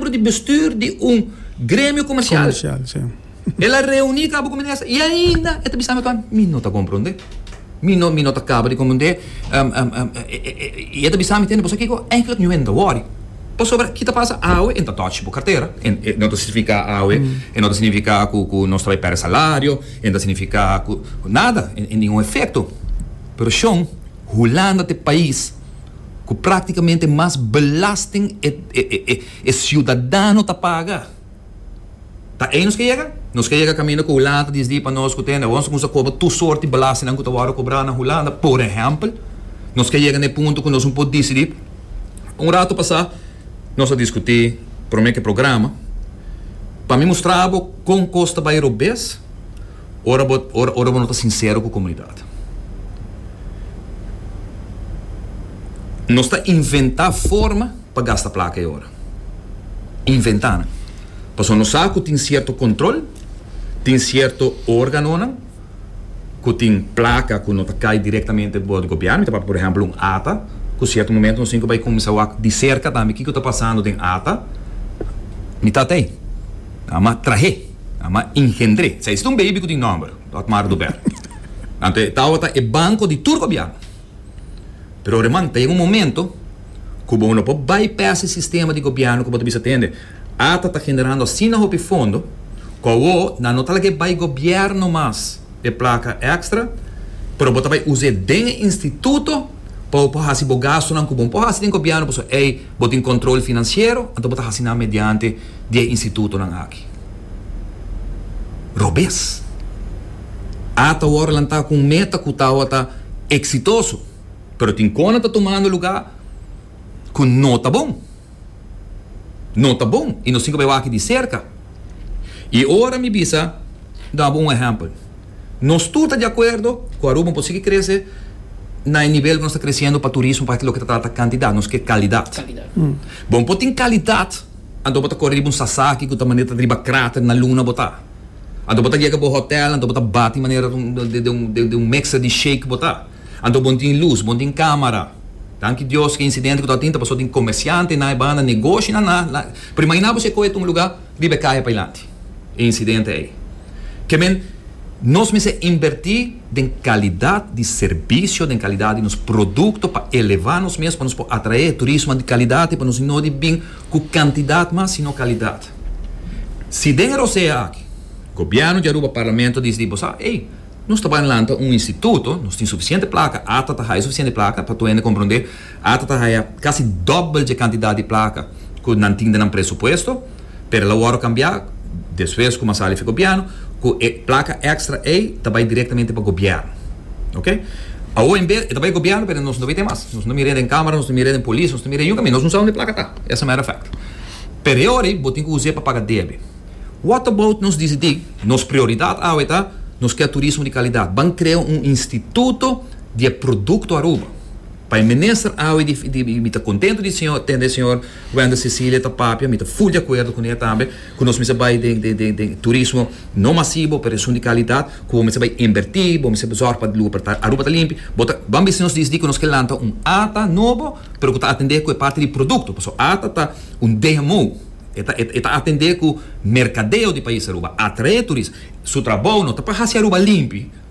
miembro di bestuur di un gremio comercial. El a reuni cabo cu minister y ainda e ta bisa mi pan mi no ta compronde. Mi no mi no ta caba di compronde y e ta bisa mi tene bo sa kico eigenlijk nu enta wori pasobra ki ta pasa awe e ta touch bo cartera e no ta significa awe e no ta significa cu cu nos ta bay perde salario e no ta significa cu nada ningun efecto pero shon hulanda ta e pais. cu practicamente mas belasting e ciudadano ta paga. Ta ey nos ke yega? Nos ke yega caminda cu Hulanda ta disdi pa nos cu te nos cuminsa cobra tur sorti belastingnan cu ta wordo cobra na Hulanda. Por ehempel, nos ke yega na e punto cu nos no por dicidi. Un rato pasa nos a discuti prome cu e programa. Pa mi mustra bo con cos ta bay robes. Ora bo ora ora bo no ta sincero cu comunidad. Nos ta inventa forma pa gasta placa e ora. Inventa nan. Pasobra nos sa cu tin cierto control, tin cierto organonan cu tin placa cu no ta cay directamente boor di gobierno. Mi ta papia por ejemplo un ata cu cierto momento nos tin cu bay cuminsa wak di cerca tambe kico ta pasando den ata. Mi tatey. Ama trahe. Ama engendré. Sa esta un baby cu tin nomber, Otmar Dubel. Anto e tawata e banco di tur gobierno. Pero reman, ta yega un momento cu bo lo por bypass e sistema di gobierno cu bo ta bisa tende ata ta generando asina hopi fondo cu awor nan no ta laga e bay gobierno mas e placa extra pero bo ta bay uzaé den e instituto pa bo por haci bo gastonan cu bo no por haci den gobierno pasobra ey bo tin control financiero anto bo ta haci nan mediante di e institutonan aki. robes. A ta wòrdu lantá ku un meta ku tabata eksitoso, pero tin kona ta tumando lugá ku no ta bon. No ta bon i nos tin ku bai wak di serka. I ora mi bisa duna bo un ehèmpel. Nos tur ta di akuerdo ku Aruba por sigui krese na e nivel ku nos ta kresiendo pa turismo, pasobra loke ta trata kantidat, nos ke kalidat. Bo por tin kalidat. Anto bo ta kore riba un sasaki ku ta manera riba krater na luna bo ta. Anto bo ta yega bo hotel, anto bo ta bati manera den un mixer di shake bo ta. Anto bon tin lus, bon tin kamara. Danki Dios ku e insidente ku ta tin ta pasó den komersiantenan, e banda negoshinan na. Pero imaginá bo si e kohe ta un lugá riba e kahe pailanti. e incidente ey. Ke men, nos mester inverti den calidad di servicio, den calidad di nos producto pa eleva nos mes, pa nos por atrae e turismo di calidad, pa nos no di bin cu cantidad mas, sino calidad. Si den e rosea aki, Gobierno di Aruba, Parlamento dici di bo sa, ey, nos ta bay lanta un instituto, nos tin suficiente placa, ata ta hay suficiente placa, pa tohende comprende, Ata ta haya casi dobbel dje cantidad di placa cu nan tin den nan presupuesto, pero el a worde cambia despues cu Masali fi gobierno, cu e placa extra ey ta bay directamente pa gobierno. Ok. Awo en bes e ta bay gobierno pero nos no bay tin mas. Nos no mire den camara, nos no mire den polis, nos no mire yunca mi. Nos no sa donde e placa ta, as a matter of fact. Pero e ora ey bo tin cu usa e pa paga debe. What about nos dicidi, nos prioridad awe ta nos kier turismo di calidad, ban crea un instituto di e producto Aruba. Pa e minister awe di mi ta contento di señor tende e señor Wender Cecilia ta papia mi ta full di acuerdo cune tambe cu nos mester bay den den den turismo no masibo pero esun di calidad cu bo mester bay inverti bo mester zorg pa luga por ta Aruba ta limpi bo ta bo a bisti nos disdi cu nos ke lanta un ata nobo pero cu ta atende cu e parti di producto pasobra e ata ta un dmo e ta e ta atende cu mercadeo di pais Aruba atrae turis su trabou no ta pa haci Aruba limpi.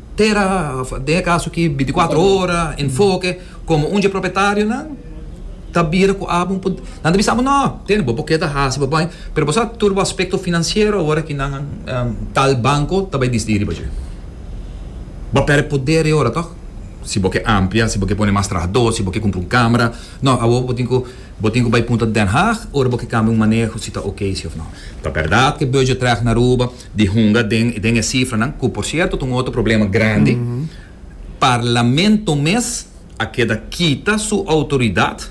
Tera, den e kaso aki binti kuater ora, enfoke, komo un dje propietarionan ta bira ku abo un poder, nan ta bisa abo, no, tene bo por ke ta hasi, bo bai, pero bo sa tur bo aspekto finansiero ora ki nan tal banko ta bai disidi riba dje. Bo a pèrdè poder e ora tòg, si bo ke amplia, si bo ke pone mas trahadó, si bo ke kumpra un kámara, no, awor bo tin ku, bo tin ku bai punta Den Haag ora bo ke kambia un maneho si ta ok si òf no. Ta bèrdat ke Budgetracht na Aruba di hunga den den e sifranan ku por sierto ta un otro problema grandi. Parlamento mes a keda kita su outoridat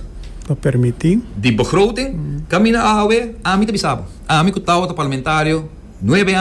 Pa permití. di begroting kaminda awe ami ta bisa bo ami ku tawa ta parlamentario nuebe.